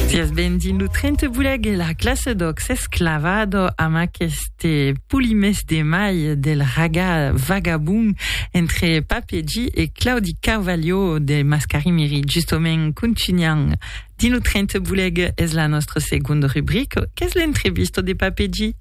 Sies benvingut Trente Boleg e la classe d'Oc s'esclavado amb aqueste polimès de mai del raga vagabond entre Pape G e Claudi Carvalho de Mascarimiri. Justement, continuant dins lo Trente Boleg es la nostra segonda rubrica qu'es l'entrevista de Pape G.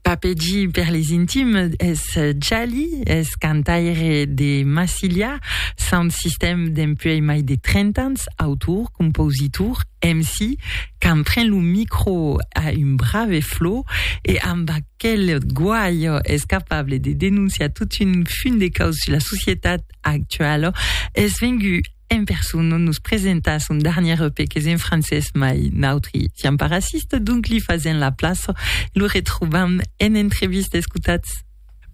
Papegi per les intimes es Jali, es cantaire de Massilia, Sound System dempuèi mai de 30 ans, autor, compositor, MC, quand pren lo micro a un brave flò e amb aquel guaio es capable de denonciar tot un fum de caus sus la societat actuala, es vengut En persona nos presenta son darnièr EP qu'es en francés mai nautri siam pas racistes, donc li fasèm la plaça e lo retrobam en entrevista, escotatz.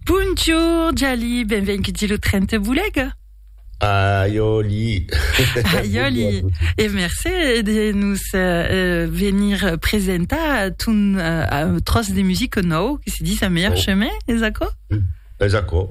Bonjour Jali, benvenguti lo tren te bolega. Aiòli! Aiòli! E mercé de nos euh, venir presentar ton euh, tros de musique nou que se dis a meilleur oh. chemin, és acò? Mm. Es aquò.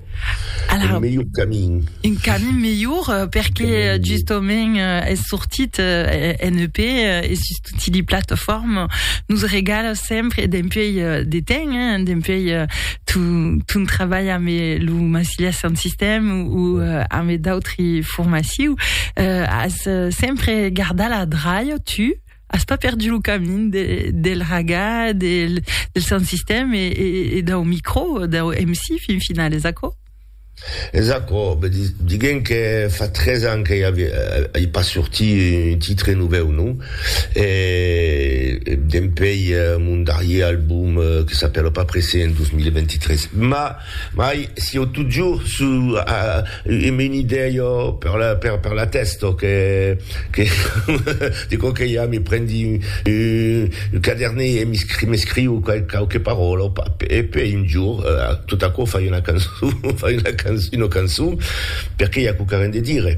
Alara, un melhor camin. Un camin melhor, euh, perque euh, justament euh, es sortit euh, en EP euh, e sus tutti li plataformes nos regala sempre dempuèi euh, de temps, hein, dempuèi euh, ton, ton trabalh amb lo Massilia Sound System ou euh, amb d'autri formaciu, euh, as euh, sempre gardat la draia, tu, As pas perdu lo camin de, del raga, del, del sound system e, e, e dau micro, dau MC fin final, es aquò? Es aquò, ben di, diguem que fa tres ans que i avia, i pas sorti un titre novèu, non? E, e dempei mon darrier album que s'apèla pas pressé en 2023. Mas. Mai sieu totjor suu a un un idèi o per la per per la tèst o que que de quò que i a me prendi un un cadernet e m'escri m'escriu qual quauque paròla o pap e pe un jor tot aquò fai una cançon fai una can una cançon perque i a quauquarren de dire.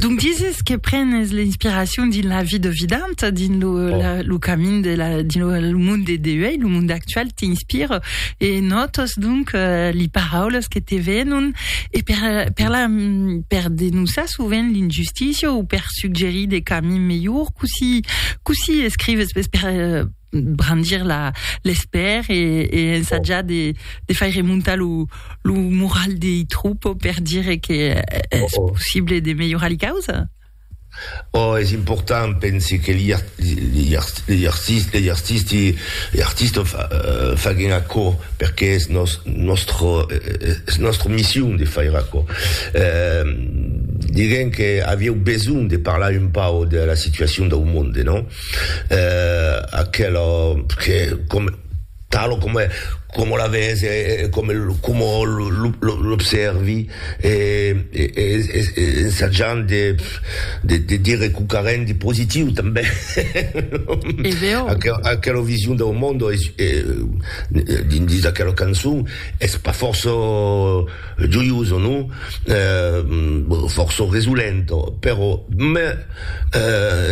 Donc dises que prenes l'inspiracion dins la vie de vident, dins lo, oh. la, lo camin de la, dins lo, lo monde de deuil, lo monde actual t'inspire e notes donc euh, les paroles que te venon e per, per, la, per denonçar sovent l'injustícia ou per suggerir des camins melhors, coussi, coussi escrives per, per brandir la l'espèr e e ensatjar de de faire montar lo lo moral dei troupes per dire que es possible de melhorar li causa? Oh, es important, pensi que li li li artisti li artisti li artisti fa faguen aquò perque es nos nòstre es nòstre mission de faire aquò. Diguem que avieu besonh de parlar un pauc de la situacion dau monde, non? eh, aquela, che, comme, talo comme, comme la vese, e, e comme, como l'observi, e, e, e, e, e ensajant de, de, de dire quauqu'a ren de positiu tanben, E veo. aquela, aquela vision dau monde, es, e, dins aquela cançon, es pas fòrça, Joioso, non? Bon, fòrça resolento, però, me,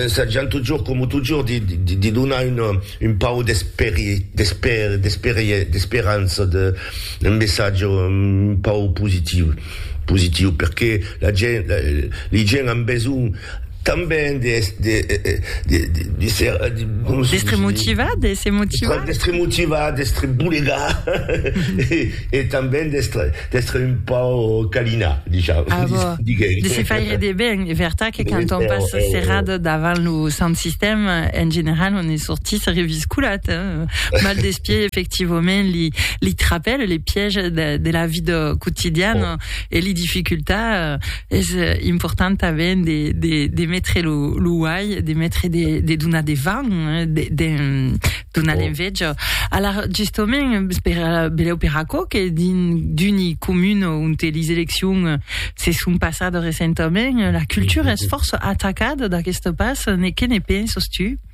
ensajant totjorn, coma totjorn, de, de, de donar una, un pauc d'esperi, d'esper, d'esperie, d'esperança, de, un messatge un pauc positiu, positiu, perqué la gent, li gent an besonh. Tanben de d'èstre motivat, d'èsser motivat. D'èstre motivat, d'èstre bolegar e tanben d'èstre un pauc calinat, disham. A vò, de se faire de ben. Es vertat que quand on passe serrat davant lo sant sistèm, en general on ne sortís reviscolat, hein? Mal des pieds, efectivament, li trapèl, les pièges de la vida quotidiana e li dificultats. es important tanben de, de, de metre lo, lo uai, de metre de, de donar de van, eh, de, de donar oh. l'enveja. Alors, justement, per, beleu per aquò que din, d'uni comun on te les eleccions eh, se sont passades recentament, la cultura es força atacada d'aquesta pas, ne, que ne penses tu?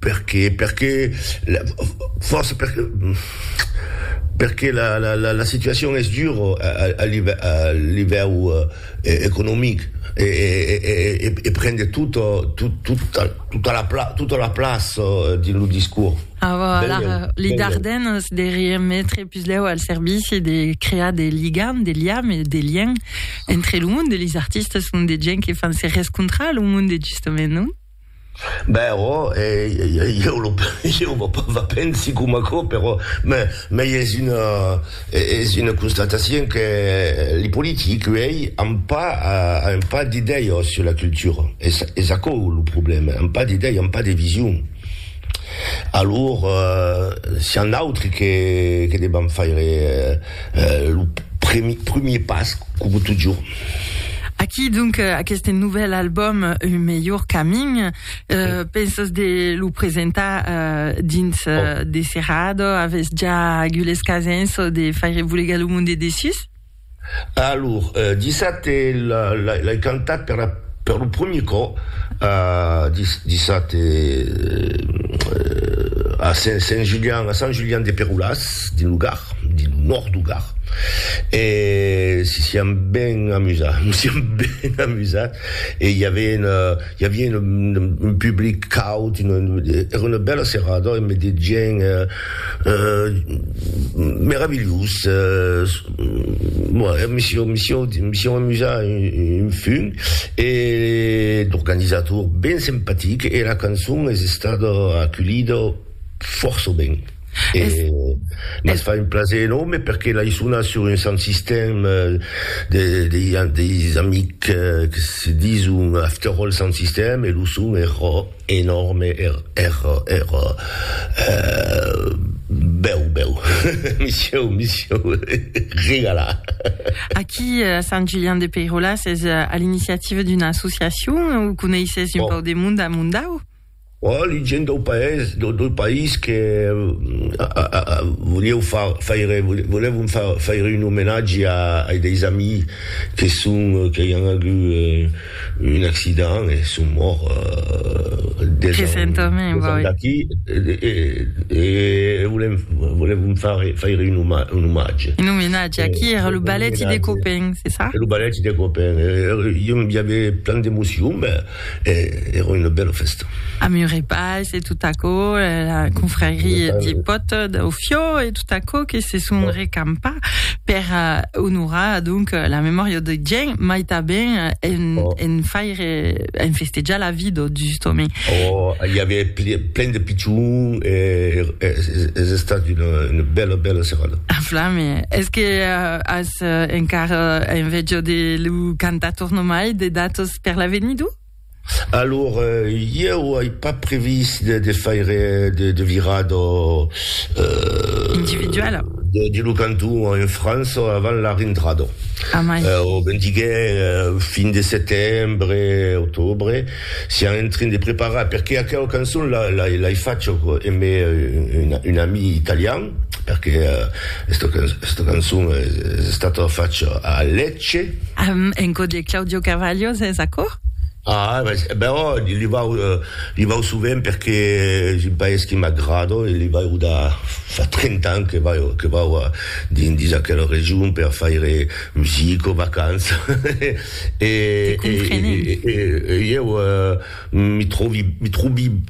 Perqué? Perqué la fòrça perqué perqué la la la la situacion es dura a a livèu economic e e e e e pren de tot tot tota tota la pla tota la plaça dins lo discors. Ah vò alar li Dardenes de remetre puslèu al servici de crear de ligam de liam e de lien entre lo monde e lis artistes ont de gent que fan se rescontrar lo monde justament non? Ben ò, ieu lo ieu vò pas va pensi coma aquò, però me mei es una es una constatatien que li politics uèi an pas an pas d'idèias sur la cultura, es es aquò lo problèma, an pas d'idèias, an pas de vision. Alor sián nautri que que devam faire Lo premier pas, coma totjorn. Aquí donc aqueste novèl album Un melhor camin, pensas de lo presentar dins de serrada? Avètz ja agules casens de faire volegar lo monde dessus? Alor, dissabte l'ai cantat per lo premier còp, dissabte a Sant Julian de Perolàs, dins lo Gard. dins lo nòrd du Gard e si siam ben amusats, nos siam ben amusats e i avien i avien un public caud, èra una bèla serrada e me de gents meravilhós, me sieu me sieu me sieu amusat un fum e l'organizator ben simpatic e la cançon es estada aculhida fòrça ben. E me fa un plaser enòrme perque l'ai sonat sur un sant sistèm de deis amics que se dison After All Sant Sistèm e lo son èra enòrme, èra èra bèu bèu, me sieu me sieu regalat. Aquí a Sant Julian de Peiròla s'es a l'iniciativa d'una associacion o coneisses un pauc de monde a Mondau? Ò li gent dau paès, dau país que volieu far faire, volèvon far faire un omenatge ai deis amis que son, qu'ai an agut un accident e son morts deus ans d'aquí e volèvon far faire un omatge. Un omenatge, aqui era lo balèti de Copèn, c'est ça? Era lo balèti de Copèn, i aviá plan d'emocion, ben, E èra una bèla fèsta. A Murepais e tot aquò, la confrarie de pòt dau Fiò e tot aquò que se son recampa per onorar donc la memòria de Gien, mai tanben en faire, en festejar la vida justament. Oh, i aviá plen de pichons e es estat una bèla, bèla serada. A flame! Es que as encara enveja de lo cantator nomai de datos per l'avenir d'u? Alor, ieu ai pas previst de, de faire de, de virar do... Euh, Individuala. De, de lo canton en França avant la rentrada. Amai. Euh, o ben diguè, euh, fin de setembre, octobre, siam en train de preparar, perque aquela cançon la, la, l'ai facha emé un, un ami italian, perque euh, esta, esta cançon es, es estata facha a Lètz, Che? En cò de Claudio Carvalho, sens acòr? Ah, bèò, li vau, li vau sovent perque es un país qui m'agrada e li vau da fa trenta ans que vau, que vau dins aquela region per faire musica, vacança e, e, e, e, e ieu mi trovi, mi trobi.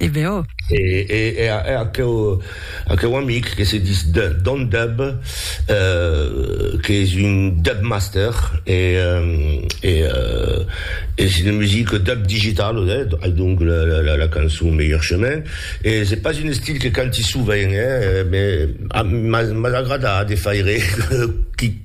E ben oh! E e a aqueu aqueu amic que se dis Don Dub, qu'es un Dub Master e e e se ne musique Dub Digital eh, ai donc la la la cançon Meilleur Chemin e se pas un estil que canti sovent eh, mais mas mas agrada de faire qui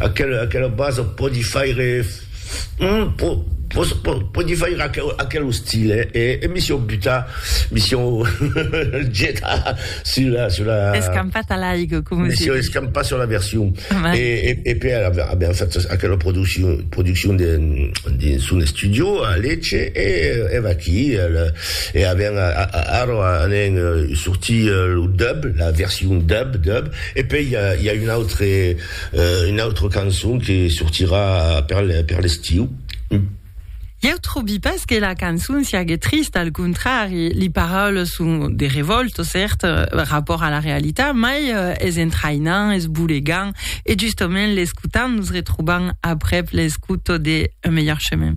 Aquela aquela basa pòdi faire hum po po po pòdi faire aquel aquel ostil eh e e mi siò butar mi siò getar sur la sur la Escampat a l'aigo coma mi se siò diu. escampat sur la version e e e pe a a aviam fat aquela produccion produccion de dins son estudio a Lecce e e vaquí al e aviam a a arro a anem sortir lo dub la version dub dub E pei i a un autre un autre cançon que sortirà per per l'estiu. Ieu trobi pas que la cançon siague trista, al contrari, li paraules son de revòlta, cèrt, rapòrt a la realitat, mai es entraïnant, es bolegant, e justament l'escotant nos retrobam aprèp l'escouta de Un melhor chemin.